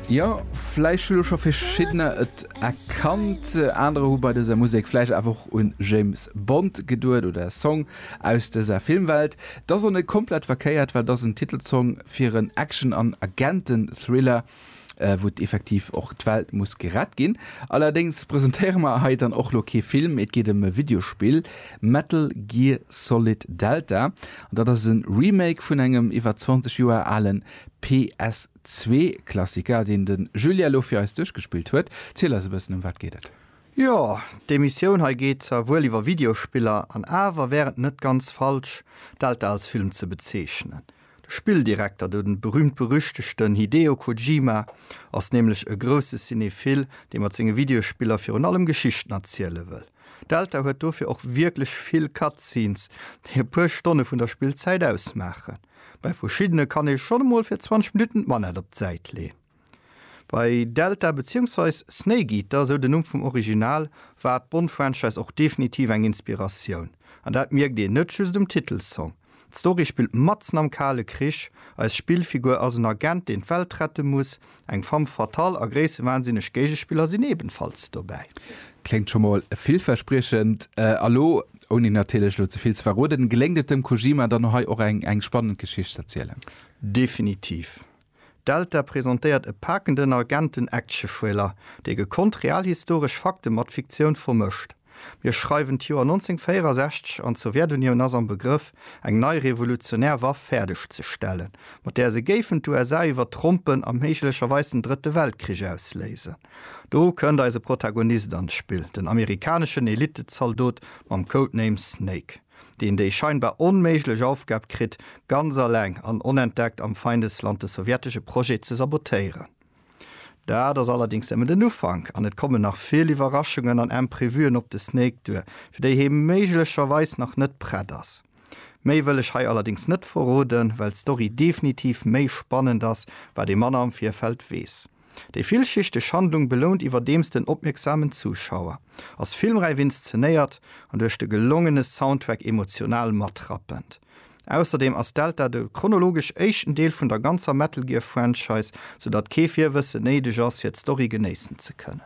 Jo, vläicht hu lo scho verschiddener et erkannt. Anerer hu bei dëser Musek vläicht awer och un James Bond geduet oder e Song aus dëser Filmwelt. T'ass och net komplett verkéiert, well t'ass en Titelsong fir en Action an Agenten-Thriller, wou et effektiv och d'Welt muss gerett ginn. Allerdéngs presentéiere mer hei dann och lo kee Film, et geet ëm e Videospill, Metal Gear Solid Delta. Dat ass e Remake vun engem iwwer 20 Joer ale PS2-Klassiker, deen de Julien elo fir eis duerchgespillt huet. Ziel eis e bëssen, ëm wat geet et? Jo, d'Emissioun hei geet zwar wuel iwwer Videospiller, an awer wär et net ganz falsch, d'Elter als Film ze bezeechnen. De Spilldirekter do, den berühmt-berüchtegten Hideo Kojima, ass nämlech e grousse Cinéphile, dee mat senge Videospiller virun allem Geschichten erziele wëll. Delta huet dofir och wierklech vill Cutscenes, déi e puer Stonne vun der Spillzäit ausmaachen. Bei verschiddene kann ee schonn emol fir 20 Minutten d'Manett op d'Säit leeën. Bei Delta beziéungsweis Snake Eater, esou den Numm vum Original, war d'Bond-Franchise och definitiv eng Inspiratioun. An dat mierkt een net just um Titelsong. D'Story spillt matzen am Kale Krich. Eis Spillfigur ass en Agent, deen d'Welt rette muss. Eng femme fatale a gréissewahnsinneg Géigespiller sinn ebenfalls dobäi. Kléngt scho mol villverspriechend. A lo, ouni natierlech elo ze vill ze verroden, geléngt et dem Kojima dann hei och eng spannend Geschicht z'erzielen? Definitiv. Delta presentéiert e pakenden Agenten-Action-Thriller, dee gekonnt realhistoresch Fakte mat Fiktioun vermëscht. Mir schreiwen d'Joer 1964 an d'Sowjetunioun ass am Begrëff, eng nei revolutionär Waff fäerdeg ze stellen, mat där se géifen d'USA iwwertrompen a méiglecherweis den Drëtte Weltkrich ausléisen. Do kënnt eise Protagonist an d'Spill, den amerikaneschen Elite-Zaldot mam Codename Snake. deen déi scheinbar onméiglech Aufgab kritt, ganz alleng an onentdeckt am Feindesland de sowjetesche Projet ze sabotéieren. Dat ass allerdings nëmmen den Ufank an et kommen nach vill Iwwerraschungen an Imprevuen op de Snake duer, fir déi hee méiglecherweis nach net prett ass. Méi wëll ech hei allerdings net verroden, well d'Story definitiv méi spannend ass, wat ee manner am Virfeld weess. Déi villschichteg Handlung belount iwwerdeems den opmierksamen Zuschauer, ass filmräif inszenéiert an duerch de gelongene Soundtrack emotional matrappend. Ausserdeem ass Delta de chronologesch éischten Deel vun der ganzer Metal Gear Franchise, sou datt kee Virwëssen néideg ass fir d'Story genéissen ze kënnen.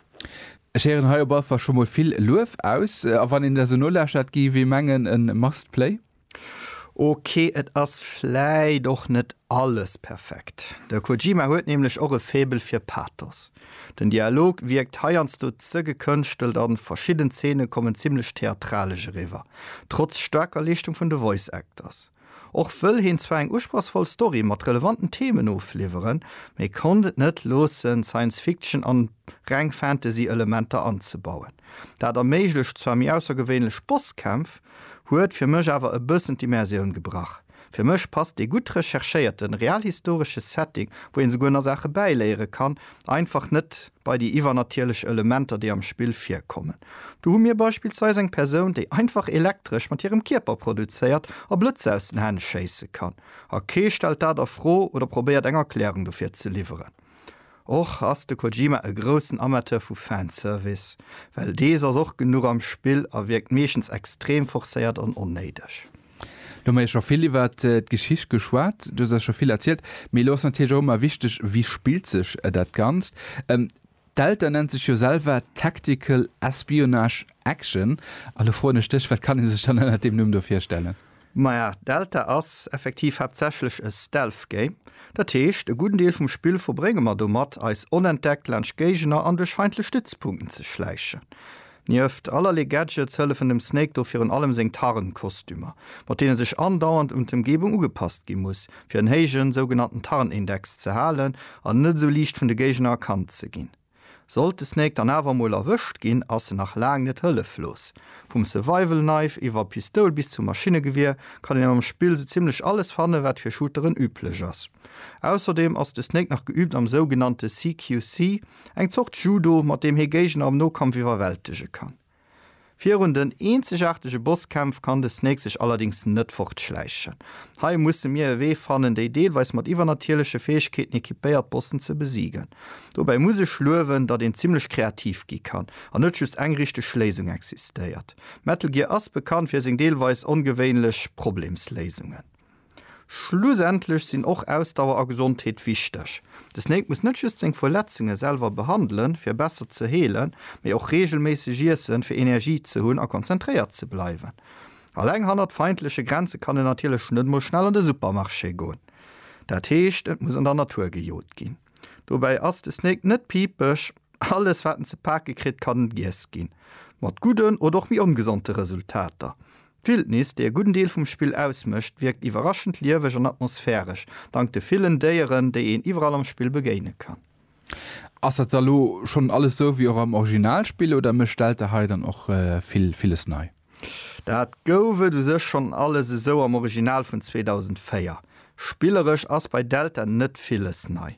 Ech héieren hei op allefall scho mol vill Luef aus, a wann een der sou nolauschtert, géif ee mengen e must play. Ok, et ass vläit och net alles perfekt. De Kojima huet nämlech och e Faible fir Pathos. Den Dialog wierkt heiansdo ze gekënschtelt an verschidden Zeene kommen zimmlech theatralesch eriwwer, trotz staarker Leeschtung vun de Voice Actors. Och wëll heen zwar eng usprochsvoll Story mat relevanten Themen ofliwweren, mee konnt et net loossen Science Fiction an reng Fantasy Elementer anzebauen. Dat erméiglecht zwar méi aussergewéinlech Bosskämpf, huet fir mech awer e bëssen d'Immersioun gebrach. Fir mech passt dee gutt recherchéierten, realhistoresche Setting, wou een souguer nach Saache bäiléiere kann, einfach net bei déi iwwernatierlech Elementer, déi am Spill virkommen. Do hu mir beispillsweis eng Persoun, déi einfach elektresch mat hirem Kierper produzéiert a Blëtzer aus den Hänn schéisse kann, a kee stellt dat a Fro oder probéiert eng Erklärung dofir ze liwweren. Och ass de Kojima e groussen Amateur vu Fanservice, well dees ass och genuch am Spill a wierkt meeschtens extrem forcéiert an onnéideg. Lo hu mer jo scho vill iwwer d'Geschicht geschwat, du hues eis scho vill erzielt, mee elo ass natierlech och ëmmer wichteg, wéi spillt sech dat Ganzt? D'Delta nennt sech jo selwer Tactical Espionage Action a lo froen ech dech, wat kann ee sech dann ënnert deem Numm do virstellen? Maja, Delta ass effektiv haaptsächlech e Stealth Game. Dat heescht, e gudden Deel vum Spill verbrénge mer domat, eis onentdeckt laanscht Géigner an duerch feindlech Stützpunkten ze schläichen. Nieft allerlee Gadgets hëllefen dem Snake do virun allem seng Tarnkostümer, mat deene sech andauernd un d'Ëmgebung ugepasst gi muss, fir en héijen, sougenannten Tarnindex ze halen an net esou liicht vun de Géigner erkannt ze ginn. Sollt de Snake dann awer emol erwëscht ginn, ass en nach laang net hëlleflos. Vum Survival Knife iwwer Pistoul bis zum Maschinnegewier kann een am Spill sou zimmlech alles fannen, wat fir Shooteren üblech ass. Ausserdeem ass de Snake nach geüübt am sougenannte CQC, eng Zort Judo, mat deem hee Géigner am Nokampf iwwerwältege kann. Virun den eenzegaartege Bosskämpf kann de Snake sech allerdéngs net fortschläichen. Hei musse mir e Wee fannen, déi deelweis mat iwwernatierleche Fäegkeeten equipéiert Bossen ze besiegen. Dobäi muss ech luewen, datt een zimmlech kreativ gi kann an net just eng richteg Léisung existéiert. Metal Gear ass bekannt fir seng deelweis ongewéinlech Problemsléisungen. Schlussendlech sinn och Ausdauer a Gesondheet wichteg. De Snake muss net just seng Verletzunge selwer behandelen, fir besser ze heelen, mee och reegelméisseg iessen, fir Energie ze hunn a konzentréiert ze bleiwen. Alleng hannert feindleche Grenze kann en natierlech net mol schnell an de Supermarché goen. Dat heescht, et muss an der Natur gejot ginn. Dobäi ass de Snake net pipeg, alles wat en ze pake kritt, kann giess ginn, mat gudden oder och méi ongesonte Resultater. D'Wildnis, déi e gudden Deel vum Spill ausmécht, wierkt iwwerraschend lieweg an atmosphäresch, dank de villen Déieren, déi een iwwerall am Spill begéine kann. Ass dat da lo schonn alles sou wéi och am Originalspill oder mécht Delta hei dann och vill villes nei? Dat gouf et u sech schonn alles esou am Original vun 2004. Spilleresch ass bei Delta net villes nei.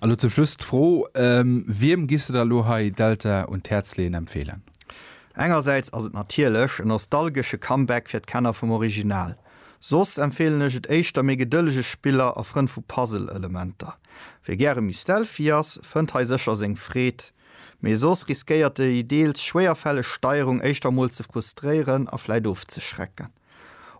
A lo zum Schluss d'Fro, Wiem giffs de der lo hei Delta un d'Häerz leeën, empfeelen? Engersäits ass et natierlech e nostalgesche Comeback fir d'Kenner vum Original. Soss empfeelen ech et éischter méi gedëllege Spiller a Frënn vu Puzzle-Elementer. Wie gäre méi stealthy ass, fënnt hei sécher seng Freed, mee soss riskéiert déi deels schwéierfälleg Steierung éischter mol ze frustréieren a vläit ofzeschrecken.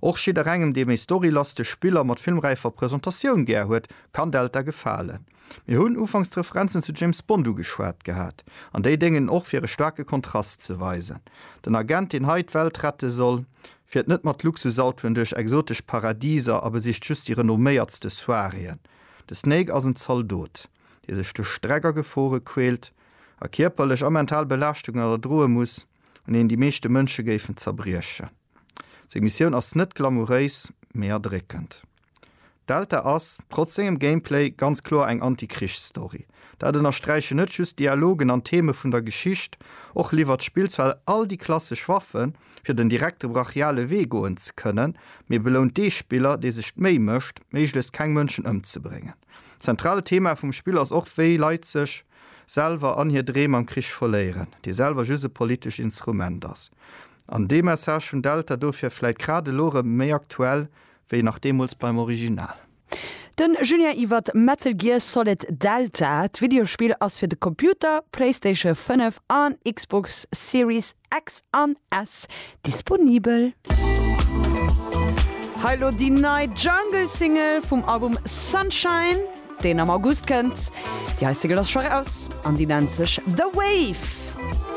Och jidderengem, dee méi storylastesch Spiller mat filmräifer Presentatioun gär huet, kann Delta gefalen. Mir hunn ufanks d'Referenzen zu James Bond ugeschwat gehat, an déi déngen och fir e staarke Kontrast ze weisen. Den Agent, deen hei d'Welt rette soll, fiert net mat Luxusautoen duerch exotesch Paradiser a besicht just déi renomméiertste Soiréeën. De Snake ass en Zaldot, dee sech duerch Streck a Gefore quält a kierperlech a mental Belaaschtungen erdroe muss, un deenen déi meeschte Mënsche géifen zerbriechen. Seng Missioun ass net glamouréis, mee erdréckend. Delta ass, trotz sengem Gameplay, ganz kloer eng Anti-Krichs-Story. Dat ënnersträichen net just d'Dialogen an d'Theme vun der Geschicht, och liwwert d'Spill zwar all déi klassesch Waffen, fir den direkte brachiale Wee goen ze kënnen, mee belount dee Spiller, dee sech d'Méi mécht, méiglechst keng Mënschen ëmzebréngen. Zentralt Thema vum Spill ass och, wéi Leit sech. selwer an hir Dreem am Krich verléieren, dee selwer just e politescht Instrument ass, an dee Message vun Delta dofir vläit grad elo erëm méi aktuell wéi nach deemools beim Original. Den Julien iwwer Metal Gear Solid Delta. D'Videospill ass fir de Computer, Playstation 5 an Xbox Series Ex an S disponibel. Hei lo déi nei Jungle Single vum Album Sunshine deen am August kënnt. Déi hei Single ass scho raus an déi nennt sech The Wave.